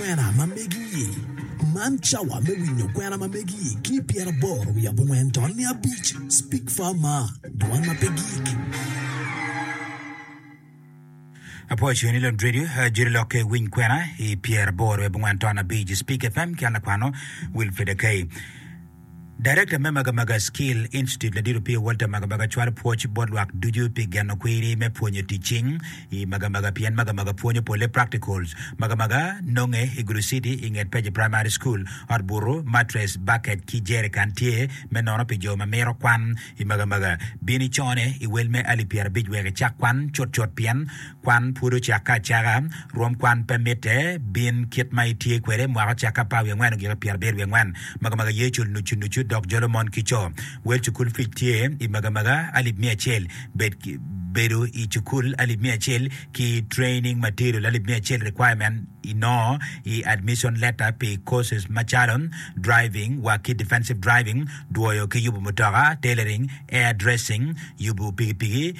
Kwena ma megi-i. Man cawa me winyo kwena ma megi-i ki i pyeraboro wiye abongwen tol ni abic. Speak Far Mar, Dwan ma pe Gik. Apwoco ni lod redio Jiri lokke winy kwena i pyeraboro wiye abongwen tol ni abic. Speak FM ki an lakwano Wilfred Akei. Darekta me Magamaga Skill Institute Ladit Opio Walter Magamaga cwalo pwoc bot lwak ducu pi geno kwiri me pwonyo tic cing i Magamaga pien Magamaga pwonyo polle practicals. Magamaga nonge i Gulu City i nget Page Primary School. Ot butu, mattress, bucket ki jerrican tye me nono pi jo ma mito kwan i Magamaga. Bini cone i wel me alip pyerabic wek icak kwan cutcut pien Kwan pud ocakke acaka. Rwom kwan pe mitte. Bin kit ma itye kwede, mwaka ocakke apar wiye angwen ogiko pyerabiro wiye angwen. Magamaga ye cul nucu nucu dok jolo mon ki co. Wel cukul fic tye i magamaga alip miya acel. Bed ki bedo i cukul alip miya acel ki training material alip miya acel requirement inongo i admission letter pi courses macalo driving wa ki defensive driving, dwoyo ki yubo mutoka, tailoring, air dressing, yubo pikipiki,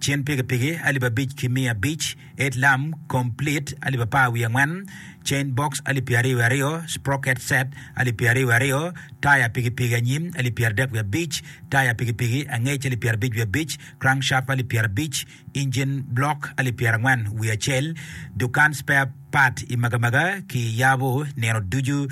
cen pikipiki alip abic ki miya abic, it lam komplit alip apar wiye angwen, cen box alip pyeraryo wiye aryo, sprocket set alip pyeraryo wiye aryo, taya pikipiki anyim alip pyeradek wiye abic, taya pikipiki angec alip pyerabic wiye abic, crankshaft alip pyerabic, injin block alip pyerangwen wiye acel. Dukan spare part i Magamaga kiyabo nino ducu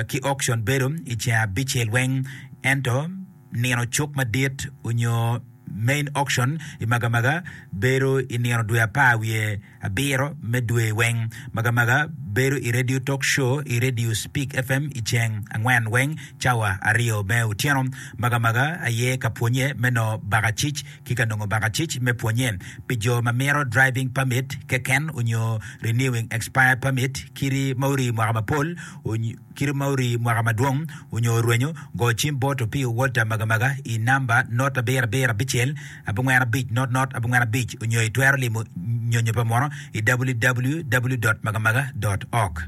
ki auction bedo i ceng abicel weng ento Nino Cuk Madit onyo Main Auction i Magamaga bedo i nino dwe apar wiye abiro me dwe weng. Magamaga bedo i Radio Talk Show i Radio Speak FM i ceng angwen weng cawa aryo me otyeno. Magamaga aye ka pwonye me noo bakacic ki ka nongo bakacic me pwonye pi jo ma mito driving permit keken onyo renewing expired permit kidi ma orii mwaka mapol onyo Kit ma orii mwaka madwong onyo orwenyo, go cim bot Opio Walter Magamaga i namba not abiro abiro abicel abongwen abic not not abongwen abic onyo i twero limo nyonyo pa muno i www.magamaga.org.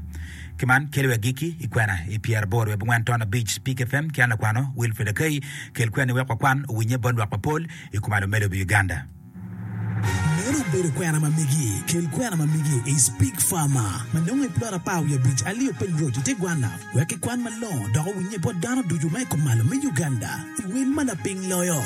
Ki man kelo agikki i kwena i pyera aboro wiye abongwen ton abic Spik FM ki an lakwano Wilfred Akai kel kweni wek wakwan owinye bot lwak mapol i kom alomelo me lobo Uganda. Meno obedo kwena ma megi. Kel kwena ma megi i Spig Farmer ma nongo i plot apar wiye abic alio Peng Road i te gwanna wek kikwan malongo dok owinnye bot dano ducu ma i kumalo me Uganda i wel ma laping loyo.